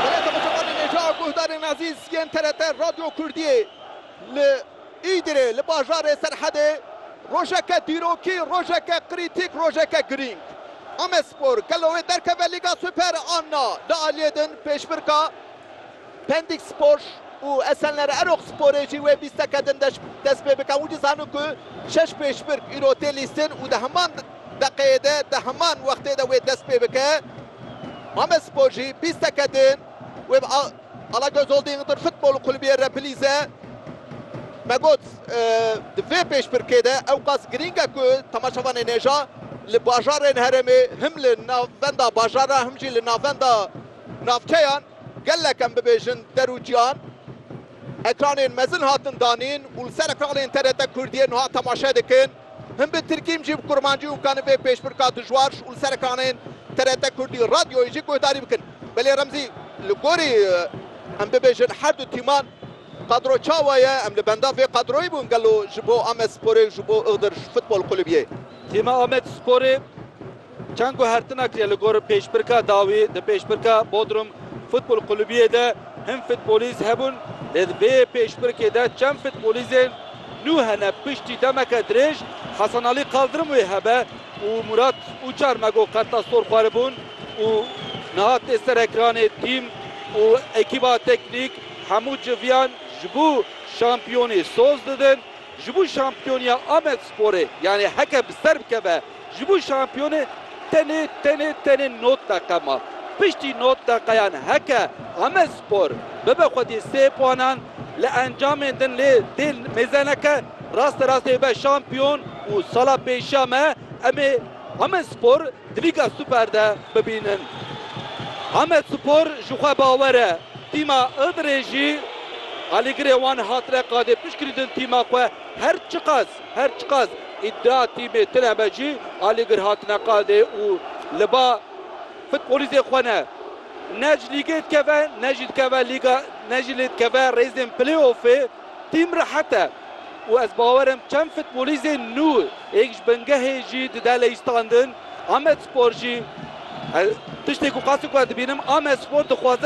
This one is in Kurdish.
Beleta Mustafa Neneca, guhdarên ezîz yên TRT Radyo Kurdiyê li Îdirê li bajarê Serhedê rojeke dîrokî, rojeke krîtîk, rojeke girîng. Amedspor gelo wê derkeve Lîga Super an na? Li aliyê din pêşbirka Pendikspor û Esenler Eroxsporê jî wê bîsteke din dest pê bike. Hûn jî zanin ku şeş pêşbirk îro tê lîstin û di heman deqeyê de di heman wextê de wê dest pê bike. Mamespor jî bîsteke din wê bi Alagöz Holding Interfutbol Kulübiyê re bilîze. Me got di vê pêşbirkê de ewqas girîng e ku temaşevanên hêja li bajarên herêmê him li navbenda bajaran him jî li navbenda navçeyan gelek em bibêjin der û ciyan. Ekranên mezin hatin danîn û li ser ekranên TRT Kurdiyê niha temaşe dikin. Hin bi tirkî hin jî bi kurmancî û kani vê pêşbirka dijwar ji serekanên TRT Kurdî Radyoyê jî guhdarî bikin. Belê Remzî, Li gorî em bibêjin her du tîman qadro çawa ye? Em li benda vê qadroyê bûn gelo ji bo Amedsporê û ji bo Iğdır Futbol Kulübiyê? Tîma Amedsporê Çend ku her tinak ye li gor pêşbirka dawî di pêşbirka Bodrum Futbol Kulubiyê de hin futbolîst hebûn lê di vê yê pêşbirkê de çend futbolîzên nû hene piştî demeke dirêj Hasan Alî Kaldırım wê hebe û Murat Uçar Mego Kartasor xweribûn û niha tê ser ekranê tîm û ekîba teknîk hemû civiyan ji bo şampiyonî soz didin ji bo şampiyoniya Amedsporê yanî heke bi ser bikeve Ji bo şampiyonê tenê tenê tenê nod deqe ma. Piştî nod deqeyan heke Amedspor bibe xwedî sê puanan li encamên din lê tê mêze neke raste rastê bibe şampiyon û sala pêşiya me em ê Amedspor di Lîga Super de bibînin. Amedspor ji xwe bawer e. Tîma Ildirê jî alîgirê wan hatine qadê piştgirîdin tîma xwe her çiqas Her çiqas îdia tîmê tune me jî alîgir hatine qadê û li ba futbolîstê xwe ne ne ji lîgê dikeve ne jî dikeve lîga ne jî lê dikeve rêzên play-offê. Tîm rehet e û ez bawer im çend futbolîstên nû êk ji bingehê jî dide leyîstandin. Amedspor jî tiştê ku qasî ku ez dibînim Amedspor dixwaze